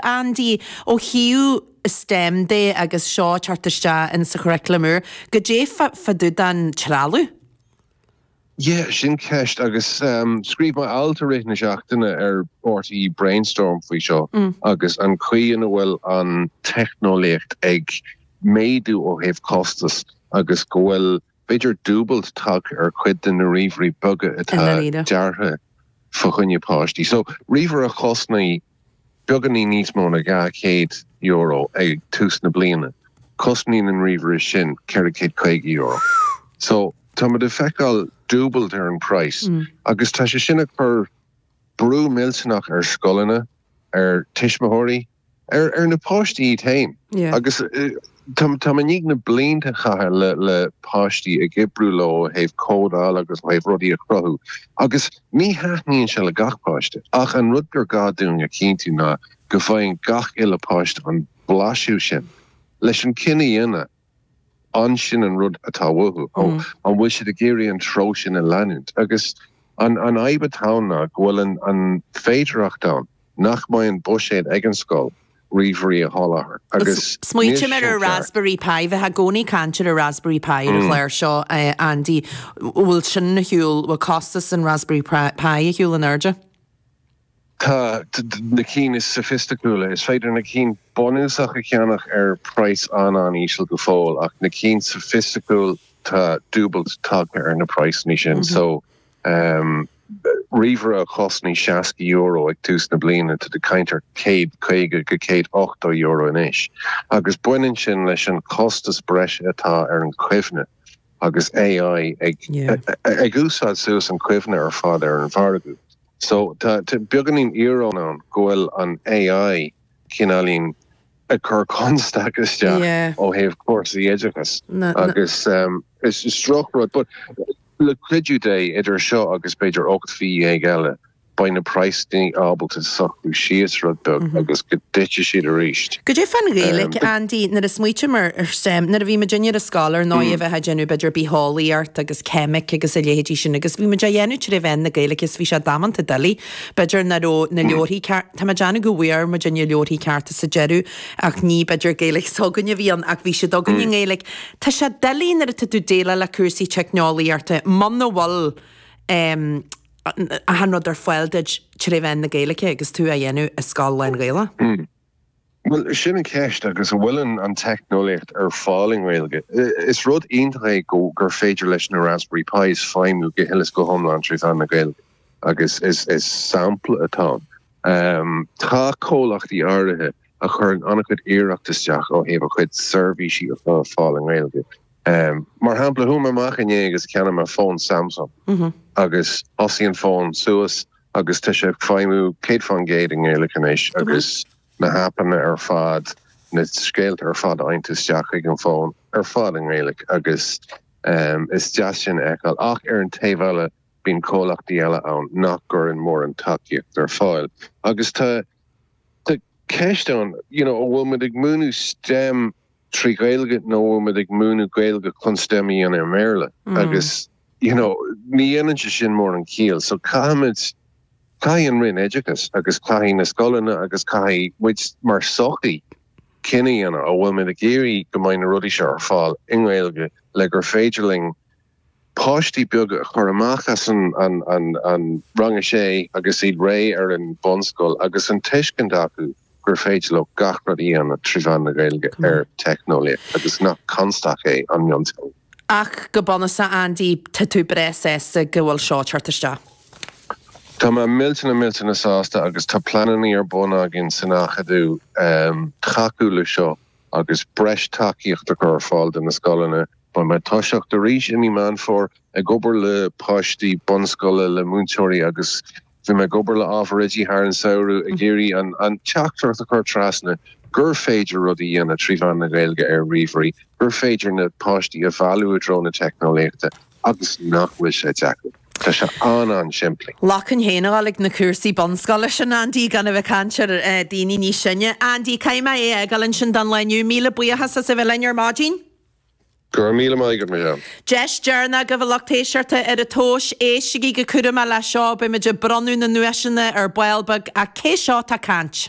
Andy ó thaobh stem de agus seo ag teacht isteach in sa churriculum úr, goidé fá dtaobh den trealamh? Yeah, sin ceist agus scríobh mé alt i rith na seachtaine ar RTÉ Brainstorm faoi seo agus an chaoi ina bhfuil an teicneolaíocht ag méadú ó thaobh costas agus go bhfuil b'fhéidir dúbailt tagtha ar chuid de na ríomhairí beaga atá deartha fá choinne páistí so, ríomhaire a chosnaigh beagáinín níos mó ná dhá chéad euro ag tús na bliana, cosnaíonn an ríomhaire sin ceithre chéad caoga euro. So, táimid ag feiceáil dúbailt ar an praghas agus tá sé sin ag cur brú millteanach ar scoileanna, ar tuismitheoirí, ar na páistí iad féin. Agus tá mé i ndiaidh na blianta a chaitheamh le páistí ag oibriú leo ó thaobh códáil agus ó thaobh rudaí a chruthú. Agus ní thaitníonn sé le gach páiste. Ach an rud gur gá dúinn a chinntiú ná go bhfaigheann gach uile páiste an blaiseadh sin. Leis an cinneadh a dhéanamh. an sin an rud atá uathu? An bhfuil siad ag iarraidh an treo sin a leanúint? Agus an fhadhb atá ann ná go bhfuil an féidearthacht ann nach mbeidh an buiséad ag an scoil ríomhairí a sholáthar. Agus níl sin ceart. Raspberry Pi, bhítí i gcónaí ag caint ar an Raspberry Pi ar an gclár seo, Andy. Bhfuil sin ar shiúl, bhfuil costas an Raspberry Pi ar shiúl in airde? Tá na cinn is soifisticiúla, is féidir na cinn bunúsach a cheannach ar praghas an-an-íseal go fóill, ach na cinn soifisticiúil tá dúbailt tagtha ar na praghasanna sin. So, ríomhaire a chosnaigh €60 ag tús na bliana, tá tú ag caint ar €150-180 anois, agus baineann sin leis an chostas breise atá ar an chuimhne, agus AI ag úsáid suas an chuimhne ar fad ar an mhargadh. So, tá beagáinín íoróin ann go bhfuil an AI cineáilín ag cur constaic isteach ó thaobh cúrsaí oideachais agus is drochrud, but le cuidiú Dé, idir seo agus b'fhéidir ocht mhí dhéag eile, beidh na praghasanna ábalta socrú síos rud beag agus go dtitfidh siad arís. Goidé fán Ghaeilge, Andy, nuair a smaoitím ar stem, nuair a bhí muidinne ar an scoil, ar ndóigh, bhí muid ag déanamh b'fhéidir bitheolaíocht agus. ceimic agus a leithéidí sin agus bhí muid á dhéanamh trí mheán na Gaeilge so bhí sé damanta doiligh. B'fhéidir nach raibh na leabharthaí ceart, tá mé ag déanamh go bhfuair muid na leabharthaí cearta sa deireadh ach ní b'fhéidir Gaeilge s'againne a bhí ann ach bhí siad againne i nGaeilge. Tá sé doiligh nuair atá tú ag déileáil le cúrsaí teicneolaíochta muna bhfuil achan rud ar fáil duit trí mheán na Gaeilge agus tú á dhéanamh i scoil lán-Ghaeilge. Bhuel, sin an cheist, agus an bhfuil an teicneolaíocht ar fáil i nGaeilge? Is rud iontach é gur féidir leis na Raspberry Pis feidhmiú go huile is go hiomlán trí mheán na Gaeilge, agus is sampla atá ann. Tá comhlachtaí áirithe a chuireann an-chuid iarracht isteach ó thaobh a gcuid seirbhísí a chur ar fáil i nGaeilge. Mar shampla, chuaigh mé amach inné agus cheannaigh mé fón Samsung, agus thosaigh an fón suas, agus tá sé ag feidhmiú 100 fán gcéad i nGaeilge anois agus na haipeanna ar fad, na scéalta ar fad a fhaightear isteach chuig an bhfón, ar fad i nGaeilge agus is deas sin a fheiceáil. Ach ar an taobh eile, bíonn comhlachtaí eile ann nach gcuireann mórán tacaíochta ar fáil agus tá tá ceist ann, you know, an bhfuil muid ag múineadh stem, trí Ghaeilge nó an bhfuil muid ag múineadh Gaeilge chun stem a dhéanamh i mBéarla agus you know ní dhéanann sé sin mórán ciall so caithfimid, caithfidh an Roinn Oideachais agus caithfidh na scoileanna agus caithfidh muid mar sochaí cinneadh a dhéanamh an bhfuil muid ag iarraidh go mbeidh na rudaí seo ar fáil i nGaeilge le gur féidir linn páistí beaga a chur amach as an rang a sé agus iad réidh ar an bhunscoil agus an tuiscint acu gur féidir leo gach rud a dhéanamh trí mheán na Gaeilge ar teicneolaíocht agus nach constaic é an mionteanga. Ach go bunúsach, Aindí, tá tú breá sásta go bhfuil seo ag teacht isteach. Tá mé millteanach millteanach sásta agus tá pleanannaí ar bun againn san Acadamh tacú le seo. agus breis tacaíocht a chur ar fáil do na scoileanna. Beidh mé ag toiseacht arís i mí Meán Fómhair ag obair le páistí bunscoile, le múinteoirí agus bhí mé ag obair le ábhar oidí thar an samhradh ag iarraidh an teachtaireacht a chur trasna gur féidir rudaí a dhéanamh trí mheán na Gaeilge ar ríomhairí, gur féidir na páistí a mhealladh i dtreo na teicneolaíochta. Agus nach bhfuil sé deacair. Tá sé an-an-simplí. Ghlacfainn féin le fáil ag na cúrsaí bunscoile sin, Aindí, gan a bheith ag caint ar dhaoine níos sine. Aindí, caithfidh mé é a fhágáil ansin don lá inniu. Míle buíochas as a bheith linn ar maidin. Go raibh míle maith agat, Michelle. Deis deireanach agaibh, a lucht éisteachta, ar an tomhas, éistigí go cúramach leis seo, beidh muid ag bronnadh na nduaiseanna ar ball beag, ach cé seo atá ag caint?